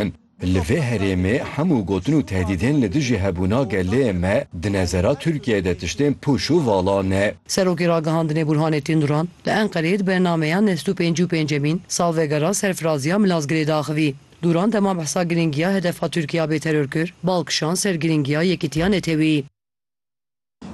kirin. Li vê herêmê hemû gotin û tehdîdên li dijî hebûna gelê me di nezera Tirkiyeyê de tiştên pûç û vala ne. Serokê Ragihandinê Burhanettin Duran li Enqereyê di bernameya nest û pêncî û pêncemîn salvegera serfiraziya Milazgirê de axivî. Duran dema behsa girîngiya hedefa Tirkiya bê terorkir, bal kişand ser girîngiya yekîtiya neteweyî.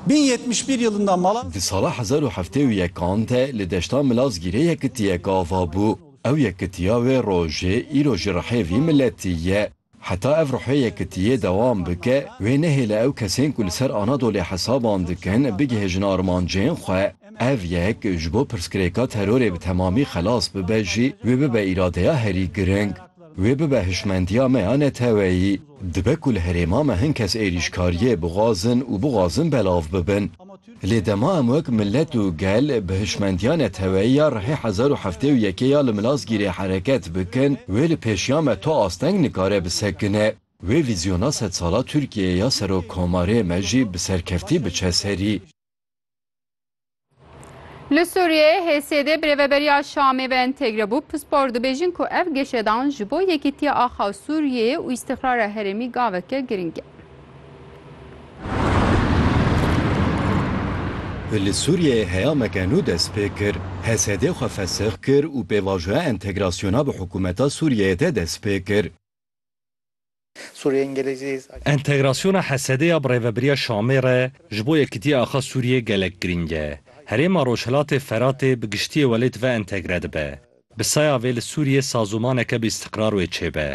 Bin yetmiş bir yılında Mala. Di sala hezar û heftê û yek an de li deşta Milazgîrê yekitiyek ava bû. Ew yekitiya wê rojê îro ji rihê vî miletî ye. Heta ev ruhê yekitiyê dewam bike, wê nehêle ew kesên ku li ser Anadolê hesaban dikin bigihêjin armancên xwe. Ev yek ji bo pirsgirêka terorê bi temamî xelas bibe jî wê bibe îradeya herî giring. Wê bibe hişmendiya me ya neteweyî. Dibe ku li herêma me hin kes êrîşkariyê bixwazin û bixwazin belav bibin. Lê dema em wek milet û gel bi hişmendiya neteweyî ya rihê hezar û heftê û yekê ya li Milazgîrê hereket bikin, wê li pêşiya me tu asteng nikare bisekine. Wê vîzyona sedsala Tirkiyeyê ya Serokkomarê me jî bi serkeftî biçe serî. Li Sûriyeyê HSD bi rêveberiya Şamê ve entegre bû. Pispor dibêjin ku ev geşedan ji bo yekîtiya axa Sûriyeyê û îstîqrara herêmî gaveke giring e. Li Sûriyeyê heyameke nû dest pê kir. HSD xwe fesex kir û pêvajoya entegrasyona bi hikûmeta Sûriyeyê de dest pê kir. Sûriyeyên gelê jî. Entegrasyona HSD'ê ya bi Rêveberiya Şamê re ji bo yekitiya axa Sûriyê gelek girîng e. Herêma Rojhilatê Feratê bi giştiyê welê di ve entegre dibe. Bi saya vê li Sûriyê sazomaneke bi îstiqrar wê çêbe.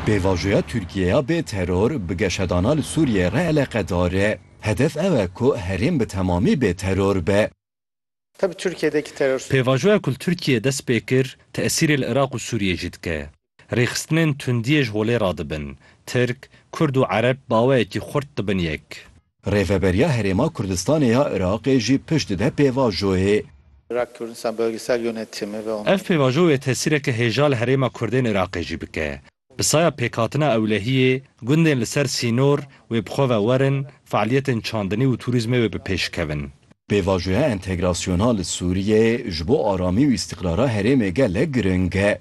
Pêvajoya Tirkiye ya bê teror bi geşedana li Sûriyê re eleqedar e. Hedef ew e ku herêm bi temamî bê teror be. Te bi Tirkiyê de kî terorist û. Pêvajoya ku li Tirkiyê dest pê kir, tesîrê li Iraq û Sûriyê jî dike. Rêxistinên tundiyê ji holê radibin. Tirk, Kurd û Ereb baweyekî xurt dibin yek. Rêveberiya Herêma Kurdistanê ya Iraqê jî pişt dide pêvajoyê. Irak Kurdistan Bölgesel Yönetimi ve Ev pêvajo wê tesîreke hêja li herêma Kurdên Iraqê jî bike. Bi saya pêkhatina ewlehiyê, gundên li ser sînor wê bi xwe ve werin, fealiyetên çandinî û tûrîzmê wê bi pêş kevin. Pêvajoya entegrasyona li Sûriyeyê ji bo aramî û îstîqrara herêmê gelek giring e.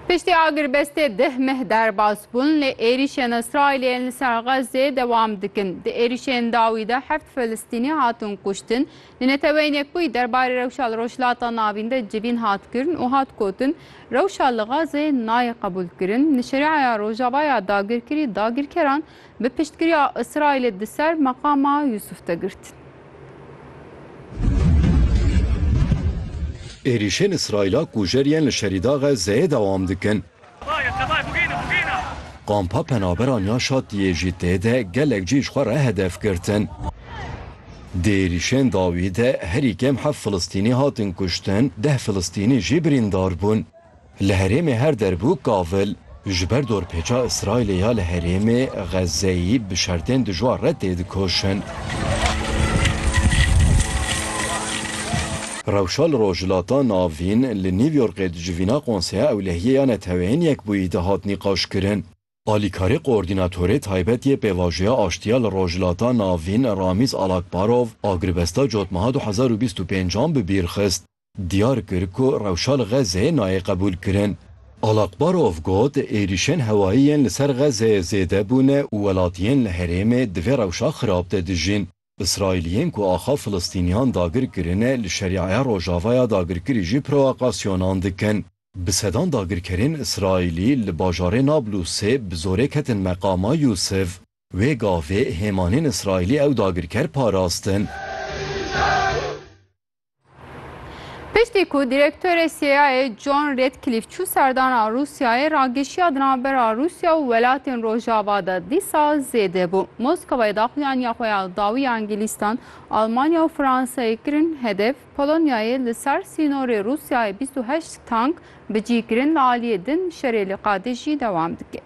Piştî agirbestê deh meh derbas bûn lê êrîşên Îsraîlê yên li ser Xezzê dewam dikin. Di êrîşên dawî de heft Filistînî hatin kuştin. Di neteweyînê ku yî derbarê rewşa li Rojhilata Navîn de civîn hat kirin û hat gotin, Rewşa li Xezzê nayê qebûlkirin, li Şerîaya Rojava ya dagirkirî dagirkeran bi piştgiriya Îsraîlê di ser meqama Yûsûf de girtin. Êrîşên Îsraîla ku jer yên li Şerîda Xezzeyê dewam dikin, kampa penaberan ya Şatiyê jî tê de gelek cî ji xwe re hedef girtin. Di êrîşên dawî de herî kêm heft Filistînî hatin kuştin, deh Filistînî jî birîndar bûn. Li herêmê her der bû kavil. Ji ber dorpêça Îsraîlê ya li herêmê Xezzeyî bi şertên dijwar re têdikoşin. Rewşa li Rojhilata Navîn li New Yorkê di civîna Konseya Ewlehiyê ya Neteweyên Yekbûyî de hat nîqaşkirin. Alîkarê Koordînatorê Taybet yê Pêvajoya Aştiya li Rojhilata Navîn Ramîz Alakbarov agiribesta cotmeha du hezar û bîst û pênc an bi bîr xist. diyar kir ku rewşa li Xezzeyê nayê qebûlkirin. Alakbarov got, Êrîşên hewayî yên li ser Xezzeyê zêde bûne û welatiyên li herêmê di vê rewşa xirab de dijîn. Îsraîliyên ku axa Filistîniyan dagir kirine li Şerîeya Rojavaya dagirkirî jî proakasyonan dikin. Bi sedan dagirkerên Îsraîlî li bajarê Nablusê bi zorê ketin meqama Yûsif. Wê gavê hêmanên Îsraîlî ew dagirker parastin. Piştî ku direktorê CIAyê John Redcliffe çû serdana Rûsyayê ragişiya di navbera Rûsya û welatên Rojava de dîsa zêde bû. Moskawayê daxuyaniya xwe ya dawiya Îngîlîstan, Almanya û Fransayê kirin hedef, Polonyayê li ser sînorê Rûsyayê bîst û heşt tank bi cî kirin li aliyê din şerê li Qadij jî dewam dike.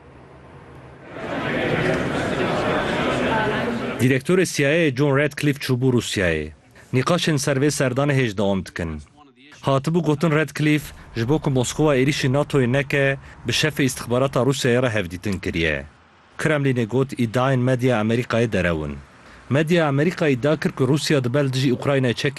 Direktorê CIAyê John Redcliffe çûbû Rûsyayê. Nîqaşên ser vê serdanê hêj dewam dikin. Hatibû gotin Radcliffe ji bo ku Moskowa êrîşî NATO'yê neke, bi şefê îstixbarata Rûsyayê re hevdîtin kiriye. Kremlînê got îdiayên medya Amerîkayê derew in. Medya Amerîkayê îdia kir ku Rûsya dibe li dijî Ukraynayê çekên